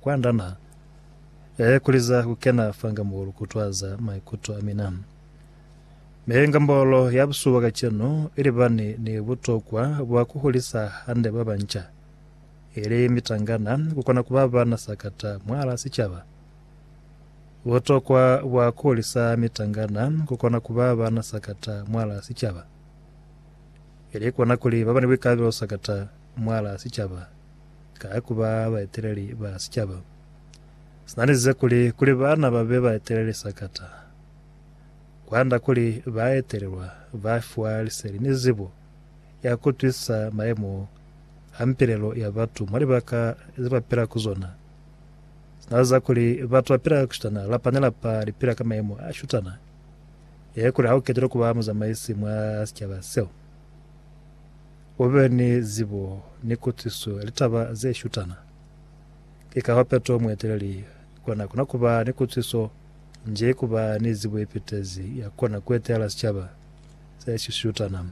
Kwanda na ee kuliza kukena fanga mo lu kutwaza maikuto a mina. Mi inga mbolo ya busuba kacenu ili bani ni butokwa bwa kuhulisa hande babanca, ili mitangana, kukona kuba bana sakata mwala sicaba. Butokwa bwa kuhulisa mitangana kukona kuba bana sakata mwala sicaba, ili kona kuli baba ni buikalabelo sakata mwala sicaba. Ka ku ba baeteleli ba sicaba, sina lize kuli, kuli bana ba be baeteleli sakata. Kwanda kuli baetelelwa ba fiwa liseli ni zibo ya ku twisisa mayemo a mpilelo ya batu mwa libaka ze ba pila ku zona. Sina liza kuli batu ba pila ku shutana, lapa ni lapa li pila ka mayemo a shutana, ye kuli ha u ketilwe ku ba muzamaisi mwa sicaba seo. U be ni zibo ni kutwisiso ya litaba ze shutana. Ki kahoo Petro mueteleli kwa n'a kona ku ba ni kutwisiso nji ku ba ni zibo ye petezi ya kona ku etelela sicaba se si shutana.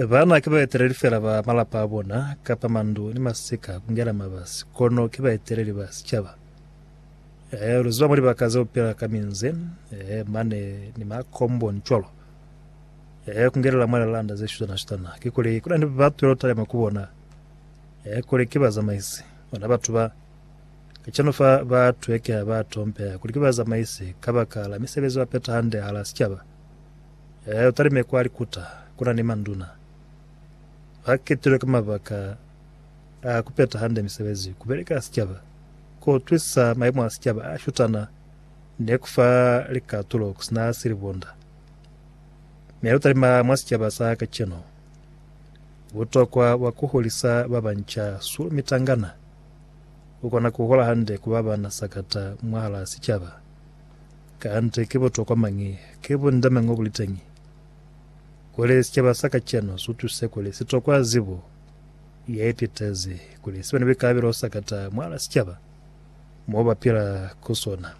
Baana ki baeteleli fela ba malapa a bona kapa mandu ni masika ku ngena mabasi, kono ki baeteleli ba sicaba. Lu ziba mwa libaka ze u pila ka minze, mane ni makomboni cwalo. eh, ku ngelela mwa lilanda ze shutana-shutana, kikuli kuna ni ba twela kutalema ku bona, eh, kuli ki bazamaisi, bona batu ba. Kacenu fa ba twekeha, ba tompeha kuli ki bazamaisi kabakala misebezi ba peta hande hala sicaba. Eh, utalime kwa likuta, kuna ni manduna. Ba ketilwe ka mabaka a ku peta hande misebezi, ku beleka sicaba, ku utwisisa maimo a sicaba a shutana, ni kufa likatulo kusina silibonda. Mi lu talima mwa sicaba sa kacenu butokwa bwa ku hulisa ba banca sulu mitangana ku kona ku hula hande ku ba ba na sakata mwahalaa sicaba. Kanti ki butokwa mañi? Ki bundeme ngo bu li teñi kuli sicaba sa kacenu su tuse kuli si tokwa zibo ye pitezi kuli si be ni buikalabelo sakata mwahalaa sicaba mo ba pila ku sona.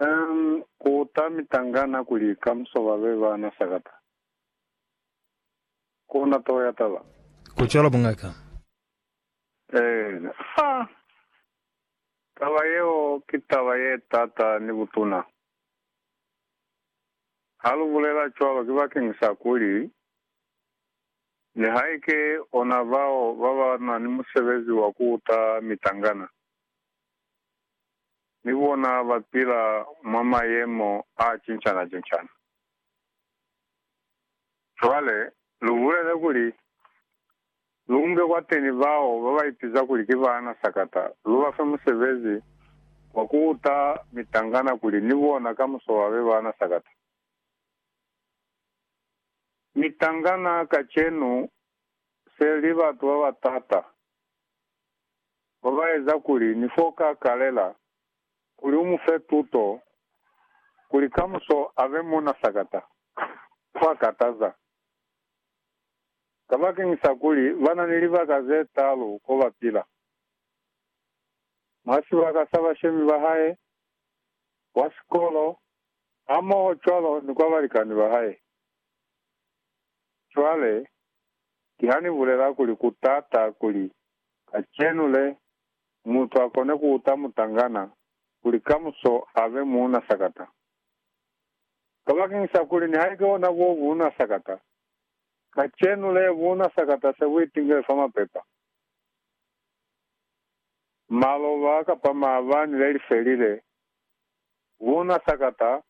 Umm ku ta mitangana kuli kamuso ba be ba na sakata. Ku na toho ya taba. Ku cwalo mungaka. Eena. Haa! Taba yeo ki taba ye t'ata ni butuna. Ha lu bulela cwalo ki bakeng sa kuli, nihaike ona bao ba ba na ni musebezi wa ku uta mitangana, ni bona ba pila mwa mayemo a cincana-cincana. Cwale, lu bulele kuli, lu nge kwateni bao ba ba ipiza kuli ki baana sakata, lu ba fe musebezi wa ku uta mitangana kuli ni bona kamuso ba be baana sakata. Mitangana kacenu se li batu ba ba t'ata. ba ba eza kuli ni f'o ka kalela kuli u mu fe tuto kuli kamuso a be muuna sakata, kwa kataza. Kabakeñisa kuli ba na ni libaka ze taalu ko ba pila, mwa sibaka sa bashemi ba hae, kwa sikolo, hamoho cwalo ni kwa balikani ba hae. Cwale, Kiha ni bulela kuli ku t'ata kuli kacenu le, mutu a kone ku uta mutangana kuli kamuso a be muuna sakata. Kabakeñisa kuli nihaike ona bo buuna sakata, kacenu le buuna sakata se bu itingele fa mapepa, maloba kapa maabani le li felile. Buuna sakata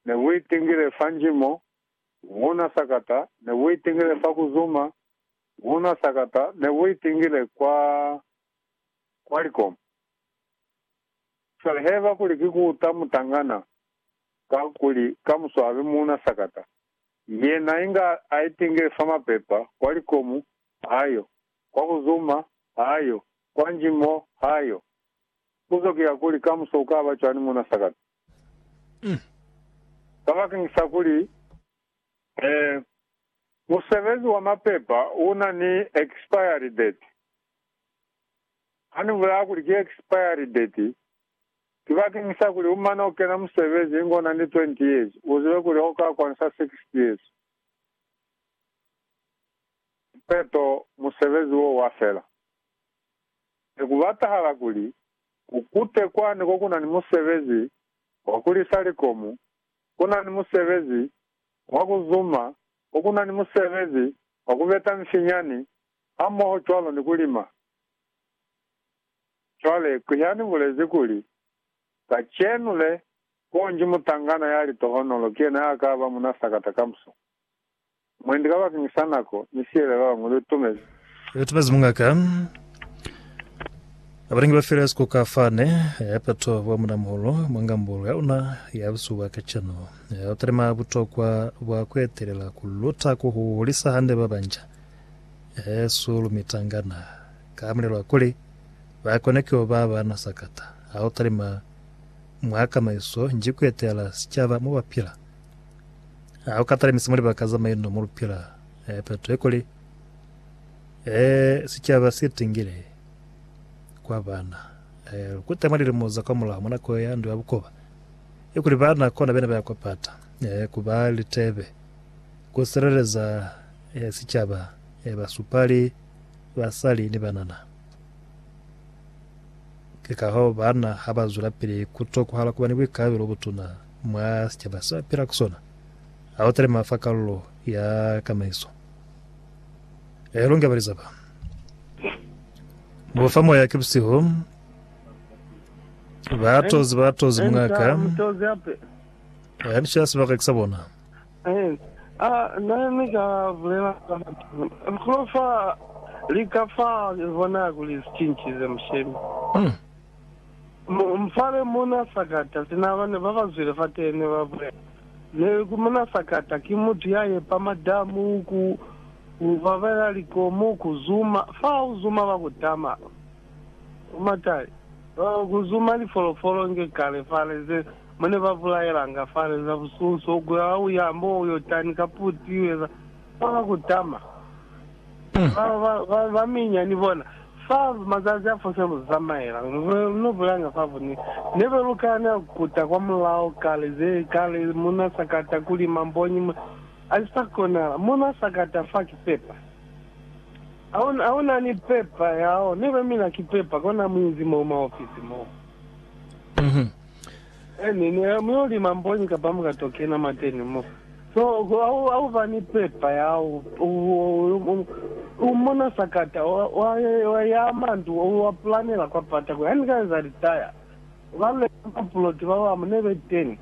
ne bu itingile fa njimo Wona sakata ne wo itingile fa ku zuma, wona sakata ne wo itingile kwa, kwa likomo. Cwale haiba kuli ki ku uta mutangana, kakuli ka mu swabe muuna sakata, yena inga a itingile fa mapepa, kwa likomo, ha yo, kwa ku zuma, ha yo, kwa nji mo, ha yo. Puzo ki ya kuli, kamuso ukaba cwani muuna sakata? Kabakeng sa kuli, musebezi wa mapepa una ni expiry date. Hani bulaya kuli ki expiry date, ki bakeng sa kuli umane ukena musebezi inge una ni 20 years, uzibe kuli hoka kwanisa 60 years kipeto musebezi wo wafela. Nekubatahala kuli, Ku kute kwani ko ku na ni musebezi wa ku lisa likomu, ku na ni musebezi wa ku zuma, ko ku na ni musebezi wa ku beta mifinyani hamoho cwalo ni ku lima. Cwale, ki ha ni bulezi kuli, kacenu le, konji mutangana ya litohonolo ki yena ya ka ba munasakata kamuso. Mwendi kabakeñi sa nako ni sihelelo hañwi lu tumezi. Lu tumezi mungaka Abalingi ba File Sikuka Fane ya peto bwa munamuhulu mwa ngambulu ya una ya busuba kacenu. U talima butokwa bwa ku etelela, ku luta, ku hulisa hande ba banca he su lu mitangana ka mulelo wa kuli ba kone ku yo ba bana sakata. Ha u talima mwa kamaiso nji ku etelela sicaba mo ba pila, Ha u katalemisi mwa libaka za maino mo lu pila, peto ye kuli sicaba si tingile kwa bana. Lu kuta mwa lilimo za kwamulaho, mwa nako ya Ndu ya Bukoba, ye kuli bana kona bene ba ya kwa pata ku ba litebe, ku sileleza sicaba, basupali, basali ni banana. Ki kahoo bana ha ba zwelapili ku tokohala ku ba ni buikalabelo bo butuna. mwa sicaba sa pila ku sona, ha u talima fa kalulo ya kamaiso. E lunge balizaba. Bo fa moya ki busihu, ba tozi ba tozi mungaka, ba bica sibaka ki sa bona. Hmm. Mupale muna sakata sina bana babazwile fateni babulela, Leku muna sakata ki mutu yayepa madamu, ku babela likomu, ku zuma fa uzuma ba kutama matali, ku zuma lifolofolo nge kale fale ze mune ba bulaelanga fale za bususo, ku ya uya mo Yordani ka puti ueza fa ba kutama. Ba baminya ni bona, fa mazazi a fose lu zamaela, lu be lu bulanga fa bune. Nebe lu kana kuta kwa mulao kale ze kale, muna sakata kuli mamboñi mwa. A si sa konahala. Muna sakata fa ki pepa. Hauna ni pepa yao. Nebe mina ki pepa, kona muinzi moo mwa ofisi moo. Eni, ni ha muyo lima mbonyi kapa muka to kena mateni mo. So, ha u ba ni pepa ya hao, u mona sakata, wa ya mandu, wa pulanela kwa pata kuli, Ha ni ka eza litaya. Ba leka mapuloti ba bamu ne be teni,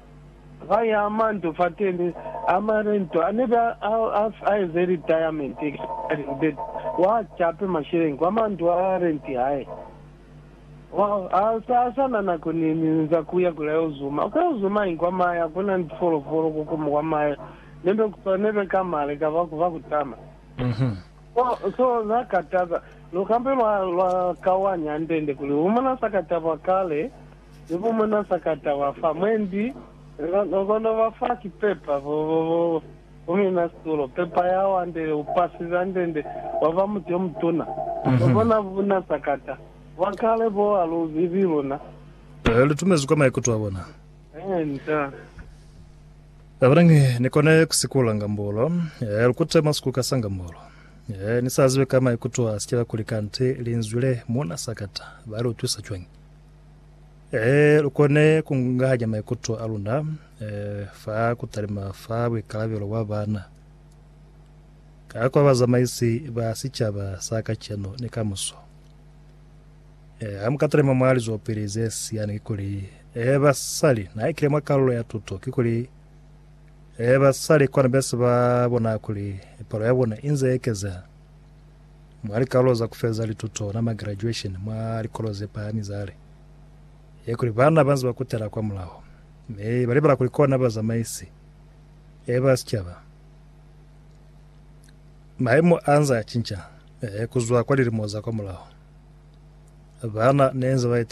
ba ya mandu fateni a marento a ne be a eze litayamenti, expiring date, wa cape masheleñi kwa mandu a renti hae. Sa sa na nako ni, ni nza kuya kula yo zuma, ku yo zuma ingu kwa mahe, ha kuna ni tifolofolo ko kuma kwa mahe, ne be kusa, ne be kama lika ba, ba kutama. So, so na ka taba, lu kambe lwa, lwa kawanya hande-nde kuli bu mona sa ka taba kale, ni bu mona sa ka taba fa. Mwendi, na, na kono ba fa sipepa, bo, bo, bo, Ku mina situlo, pepa ya wandele, bupasi bwa ndende bwa ba muti yo mutuna, na bona buna sakata, bwa kale bo ha lu zibi luna. Ee, lu tumezwi kwa maikuto a bona. Ee, nta. Abanangi, Ni kone ku sikula ngambolo. Ee, lu kute mwa sikuka sa ngambolo. Ee, ni sa zibe ka maikuto a sikila kuli kanti Linzwi le muna sakata ba li utwisa cwañi. Ee, lu kone ku nganya maikuto a luna fa ku talima fa buikalabelo bwa bana ka kwa bazamaisi ba sicaba sa kacenu ni kamuso. Ee, ha mu ka talima mwa lizwelopili ze siyani, kikuli, ee, basali, na ikile mwa kalulo ya tuto, kikuli, ee, basali kwana be se ba bona kuli palo ya bona i nze ekezeha mwa likalulo za ku feleza lituto, na ma-graduation, mwa likolo ze pahami za li. ye kuli baana banze ba kutela kwa mulaho, mi ba libala kuli kona bazamaisi e ba sicaba. Maemo anze a cinca ku zwa kwa lilimo za kwa mulaho. Baana nenze ba etelele.